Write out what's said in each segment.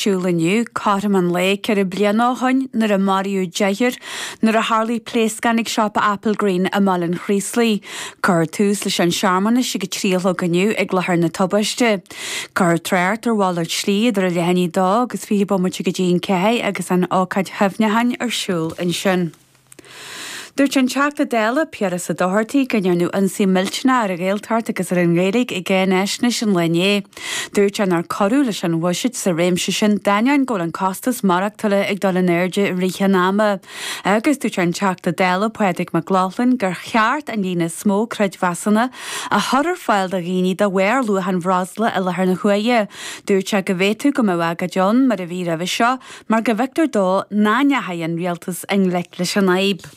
siúl inniu, cothrom an lae ceithre bliana ó shoin nuair a maraíodh deichniúr nuair a tharlaigh pléascán ag siopa Applegreen i mBaile an Chraoslaigh. Cuirfear tús leis an searmanas ag a trí a chlog inniu ag láthair na tubaiste. Cuirfear trácht ar mhalairt slí idir a leath i ndiaidh a dó agus fiche bomaite go dtí an ceathair agus an ócáid chuimhneacháin ar siúl ansin. Dúirt an Teachta Dála, Piaras Ó Dochartaigh go ndearnadh ionsaí millteanach ar an Ghaeltacht agus ar an nGaeilge i gCáinaisnéis an lae inné. Dúirt sé nár cuireadh leis an bhuiséad sa réimse sin d'ainneoin go bhfuil an costas maireachtála ag dul in airde i rith an ama agus dúirt an Teachta Dála Pádraig Mac Lochlainn gur cheart an líon is mó creidmheasanna a chur ar fáil do dhaoine de bharr luach an bhreosla i láthair na huaire. Dúirt sé go bhféadfadh go mbeadh agóid ann mar a bhí roimhe seo mar go bhfeictear dó nach ndeachaigh an rialtas i ngleic leis an fhadhb.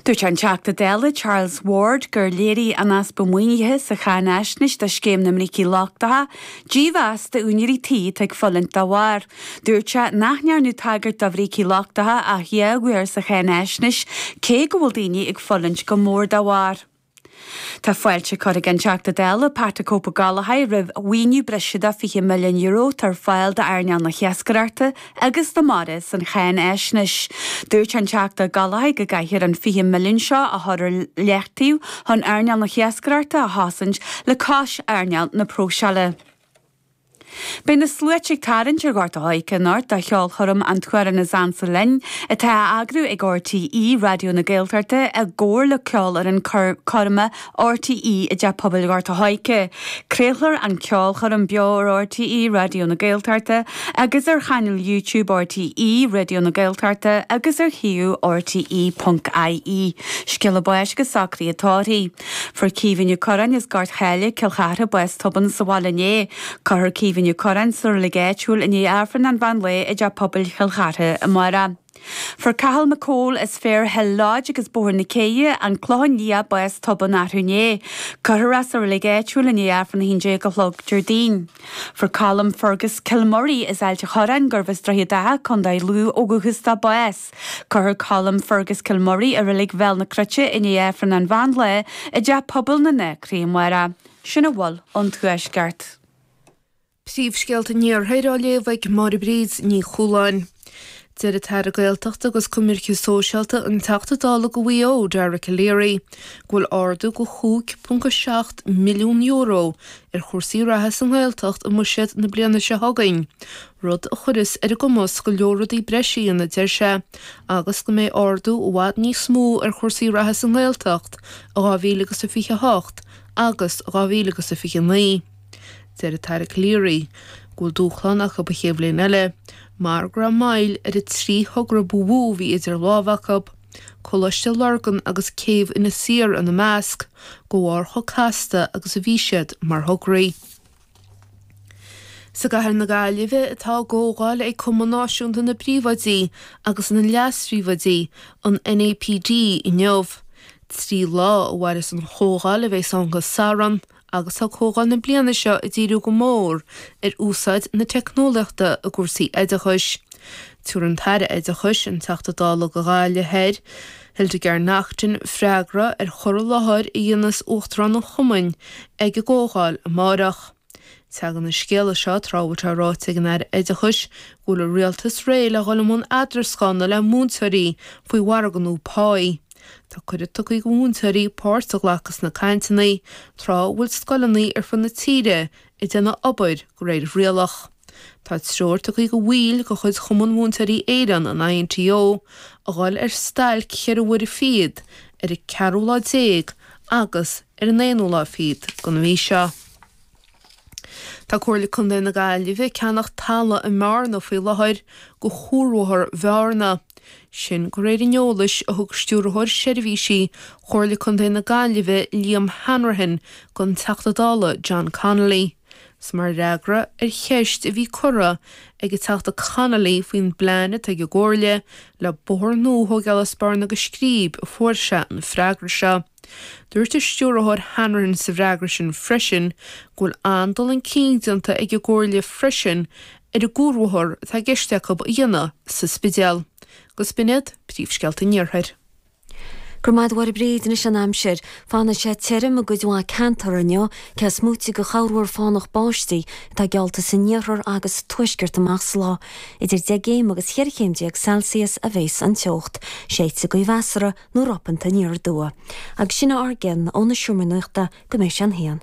Dúirt an Teachta Dála Charles Ward gur léirigh an easpa maoinithe sa cháinaisnéis do Scéim na mBrící Lochtacha dímheas d'úinéirí tí atá ag fulaingt dá bharr. Dúirt sé nach ndearnadh tagairt do bhrící lochtacha ach dhá uair sa cháinaisnéis cé go bhfuil daoine ag fulaingt go mór dá bharr. Tá fáilte curtha ag an Teachta Dála Pat 'a Cope' Gallagher roimh mhaoiniú breise de €20 milliún atá ar fáil d'earnáil na hiascaireachta agus na mara san cháinaisnéis. Dúirt an Teachta Gallagher go gcaithfear an 20 milliún seo a chur ar leataobh chun earnáil na hiascaireachta a chosaint le cois earnáil na próiseála. Beidh na sluaite ag tarraingt ar Ghort an Choirce anocht do cheolchoirm An tAmhrán is Ansa Linn, atá á eagrú ag RTÉ Raidió na Gaeltachta i gcomhar le Ceolfhoireann Coirme RTÉ i dTeach Pobail Ghort an Choirce. Craolfar an cheolchoirm beo ar RTÉ Raidió na Gaeltachta agus ar chainéal YouTube RTÉ Raidió na Gaeltachta agus ar shuíomh rte.ie. Scéala báis agus socruithe tórraimh. Fuair Caoimhín Ó Curráin as Gort Cháile, Cill Chartha, bás tobann sa bhaile inné. Cuirfear Caoimhín Ó Curráin sa reilig áitiúil i ndiaidh Aifreann an mheán lae i dTeach Pobail Chill Chartha amárach. Fuair Cathal Mac Cumhaill as Fair Hill Lodge agus Bóthar na Céidhe, An Clochán Liath, bás tobann arú inné. Cuirfear é sa reilig áitiúil i ndiaidh Aifreann 11 a chlog Déardaoin. Fuair Colm Fergus Kilmurry as Ailt an Chorráin, gurbh as Droichead Átha, Co. Lú ó dhúchas dó, bás. Cuirfear Colm Fergus Kilmurry i Reilig Bhéal na Cruite i ndiaidh Aifreann an Mheán Lae i dTeach Pobail na nAcraí amárach. Sin a bhfuil ón Tuaisceart. Príomhscéalta an Iarthair á léamh ag Máire Bríd Ní Chualáin. Deir an tAire Gaeltachta agus Coimirce Sóisialta, an Teachta Dála do Mhaigh Eo, Dara Calleary, go bhfuil ardú de €5.7 milliún ar chúrsaí reatha sa nGaeltacht i mbuiséad na bliana seo chugainn. rud a chuireas ar a gcumas go leor rudaí breis a dhéanamh, deir sé, agus go mbeidh ardú i bhfad níos mó ar chúrsaí reatha sa nGaeltacht i 2028 agus 2029. Deir an tAire Calleary go bhfuil dúshlán acu don chéad bhliain eile mar go raibh moill ar an trí thogra ba mhó a bhí idir lámha acu, Coláiste Lurgan agus Céibh Inis Oírr ina measc, de bharr chomh casta agus a bhí siad mar thograí. Is i gCathair na Gaillimhe atá a gcomhdháil ag Cumann Náisiúnta na bPríomhoidí agus na Leas-Phríomhoidí, an NAPD, inniu. Trí lá a mhairfeas an chomhdháil a bheidh ann go Satharn agus tá comhdháil na bliana seo ag díriú go mór ar úsáid na teicneolaíochta i gcúrsaí oideachais. Tabharfaidh an tAire Oideachais, an Teachta Dála do Ghaillimh Thiar, Hildegarde Naughton freagra ar chur i láthair a dhéanas Uachtarán an Chumainn ag an gComhdháil amárach. Teagann an scéal seo tráth a bhfuil sé ráite ag an Aire Oideachais go bhfuil an Rialtas réidh le dhul i mbun eadarascána le múinteoirí faoi mhargadh nua páí. Tá cuireadh tugtha aici do mhúinteoirí páirt a ghlacadh sna cainteanna tráth a bhfuil scoileanna ar fud na tíre ag déanamh obair de réir rialach. Tá treoir tugtha do bhaill de chuid Chumann Mhúinteoirí Éireann, an INTO, a ghabháil ar stailc cheithre huaire fichead ar an ceathrú lá déag agus ar an aonú lá fichead den mhí seo. Tá Comhairle Contae na Gaillimhe ag ceannach talaimh i mBearna faoi láthair do chuarbhóthar Bhearna. Sin de réir an eolais a thug Stiúrthóir Seirbhísí Chomhairle Contae na Gaillimhe, Liam Hanrahan, don Teachta Dála, John Connolly. Is mar fhreagra ar cheist a bhí curtha ag an Teachta Connolly faoin bplean atá ag an gComhairle le bóthar nua a thógáil as Bearna go Scríb a fuair sé an freagra seo. Dúirt an Stiúrthóir Hanrahan sa bhfreagra sin freisin go bhfuil an-dul chun cinn déanta ag an gComhairle freisin ar an gcuarbhóthar atá i gceist acu a dhéanamh sa Spidéal. Agus b'in iad príomhscéalta an Iarthair. Go raibh maith agat, a Bhríd. Anois an aimsir. Fanfaidh sé tirim i gcuid mhaith ceantar inniu, cé is móite de chorrmhúr fánach báistí atá geallta san iarthar agus sa tuaisceart amach sa lá. Idir deich gcéim agus cheithre chéim déag Celsius a bheas an teocht. Séidfidh gaoth mheasartha nó ropanta aniar aduaidh. Agus sin a bhfuil againn ón seomra nuachta go mbeidh sé an haon.